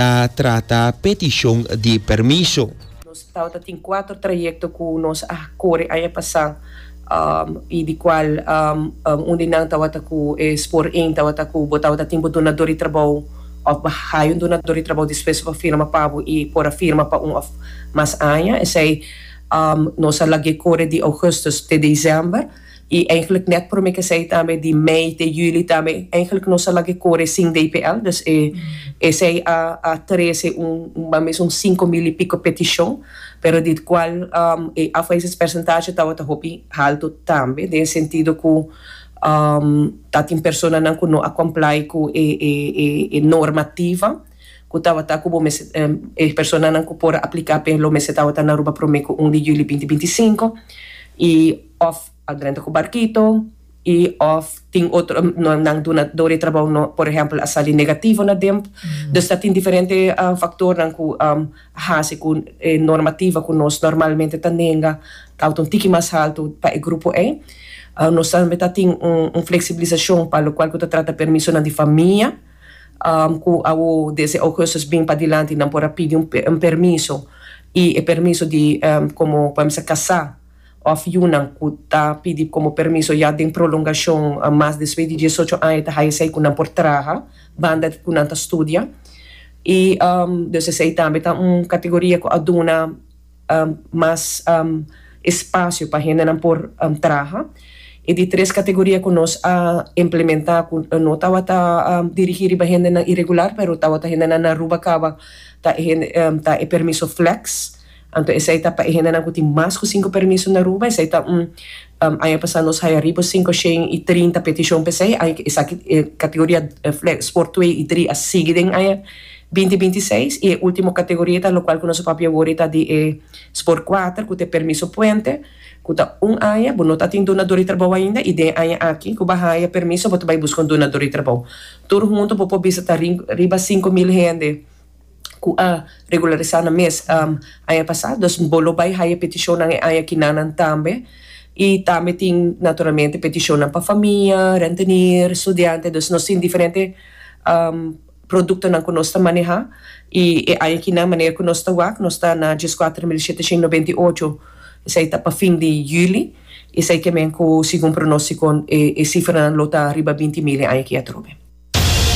ta trata petishon di permiso. Nos tawata tin kuater trayekto ku nos a kore aña pasá i di kual un di nan tawata ku e spoor één tawata ku bo tawata tin bo dunadó di trabou òf bo haya un dunadó di trabou despues bo a firma pa bo i por a firma pa un òf mas aña. Esei nos a lag'é kore di Augustus te December. y eigenlijk net prome kesey tambe di mei te juli tambe eigenlijk nos a laga e kore sin dpl dus e esey a a trece un un mas mes un cinco mil y pico peticion pero di het cual e afwezig percentahe tawata hopi halto tambe den e sentido cu tatin personanan cu no a comply cu e e e e normativa cu tawata cu bo mester e personanan cu por a aplica pe lo mester tawata na Aruba prome cu un di juli binti binti y cinco y Of a drenta ku barkito i of tin otro nan dunadó di trabou no por ehèmpel a sali negativo na demp. Dus ta tin diferente faktornan ku a hasi ku e normativa ku nos normalmente ta nenga ta autu un tiki mas haltu pa e grupo ei. Nos tambe ta tin un fleksibilisashon pa lokual ku ta trata permisonan di famia ku awo desde Augustus bin padilanti nan por a pidi un permiso i e permiso di komo por ehèmpel kasá. òf yunan ku ta pidi komo permiso ya den prolongashon mas despues di diesocho aña ta haya esei ku nan por traha banda ku nan ta studia i dus esei tambe ta un kategoria ku a duna mas espasio pa hendenan por traha i di tres kategoria ku nos a implementá ku no tabata dirigí riba hendenan iregular pero tabata hendenan na Aruba kaba ta e permiso flex. Anto esei ta pa e hendenan ku tin mas ku sinku permiso na Aruba, esei ta un Aña pasá nos haya riba sinku shen i trinta petishon pa esei, aña esaki kategoria sport twee i dri a sigui den aña binti binti seis i e último kategoria ta lokual ku nos a papia wor ta di e sport kuater ku ta e permiso puente ku ta un aña, bo no ta tin dunador di trabou ainda i den e aña aki ku bo a haya permiso bo ta bai buska un dunador di trabou. Tur huntu bo por bisa ta riba sinku mil hende. ku a regularisá nan mes aña pasá. Dus bo lo bai haya petishonnan e aña kinanan tambe. I tambe tin naturalmente petishonnan pa famia, rentenier, studiante. Dus nos tin diferente produktonan ku nos ta manehá. I e aña kinan manera ku nos ta wak nos ta na dieskuater mil sheteshon noventa i ocho. Esei ta pa fin di yüli. Esei ke men ku segun pronóstiko e sifranan lo ta riba binti mil e aña ki atrobe.